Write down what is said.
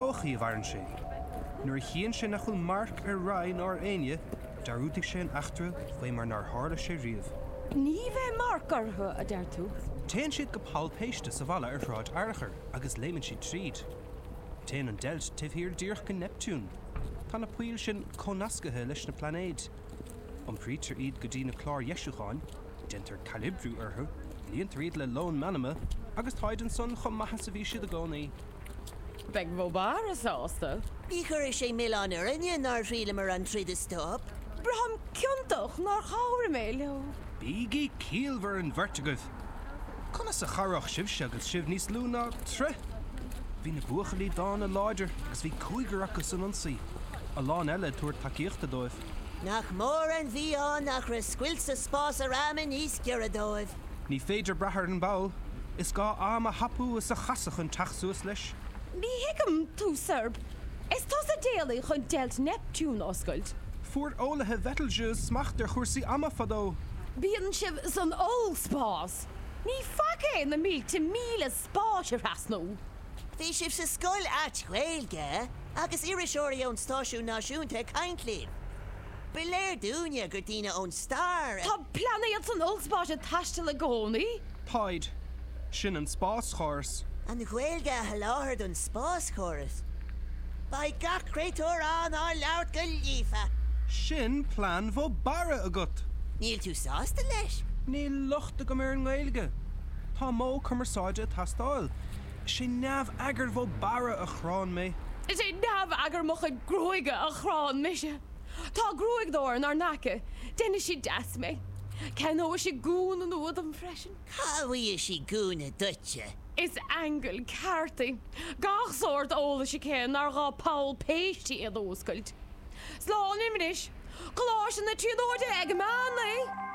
thodhchaí a mhaireann sé. Nuair a chíonn sé nach bhfuil marc ar Ray ná ar éinne, dearúdfaidh sé an eachtra faoi mar nár tharla sé riamh. Ní bheidh marc orthu, a deir tú? Téann siad go poll péiste sa bhalla ar Shráid Fhearchair agus léimeann siad tríd. Téann an deilt taobh thiar díreach go Neiptiún. Tá na poill sin comhnascaithe leis na plainéid. Iompraítear iad go dtí na cláir dheisiúcháin, déantar calibriú orthu, líontar iad le lón meanma, agus táid ansan chomh maith is a bhí siad i gcónaí. Beidh Mo Barra sásta. Ní chuirfidh sé milleán orainne nár thriaileamar an troid a stop. Braithim ciontach nár chabhraigh mé leo. Bígí ciallmhar an bheirt agaibh. Conas a chabhródh sibhse agus sibh níos lú ná troigh? Bhí na buachaillí dána láidir agus bhí cúigear acu san ionsaí, a lán eile ag tabhairt tacaíochta dóibh. Nach mór an mhí-ádh nach raibh scoilt sa spás ar aimn níos giorra dóibh. Ní féidir brath ar an bpoll. Is gá am a thapú is a chasadh chun teacht suas leis. Ní thuigim tú Sorb is tusa a d'éalaigh chun deilt Neiptiúin a oscailt? Fuair eolaithe Betelgeuse smacht ar chúrsaí ama fadó. Bíonn sibh san ollspás. Ní faic é na mílte míle spáis a thrasnú. Bhí sibh sa scoilt Ghaeilge agus iriseoirí ón stáisiún náisiúnta ag caint libh. Ba léir dúinne gur daoine ón stair iad. Tá plainéid san ollspás ag taisteal i gcónaí. Táid. Sin an spáschóras. An Ghaeilge a sholáthar don spáschóras. Beidh gach créatúr ann á labhairt go líofa. Sin plean Mho Barra agat! Níl tú sásta leis? Níl locht agam ar an nGaeilge. Tá modh cumarsáide ag teastáil. Is é neamh-eagar Mho Barra a chránn mé. Is é neamh-eagar mo chuid gruaige a chránn mise. Tá gruaigeadóir inár n-aice. Deineann sí deas mé. Ceannóidh sí gúna nua dom freisin. Cá bhfuighidh sí gúna duitse? Is aingeal ceart í. Gach sórt eolais aici nár ghá poll péiste a dh'oscailt. Slán liom anois. Coláiste na Tríonóide ag meán lae!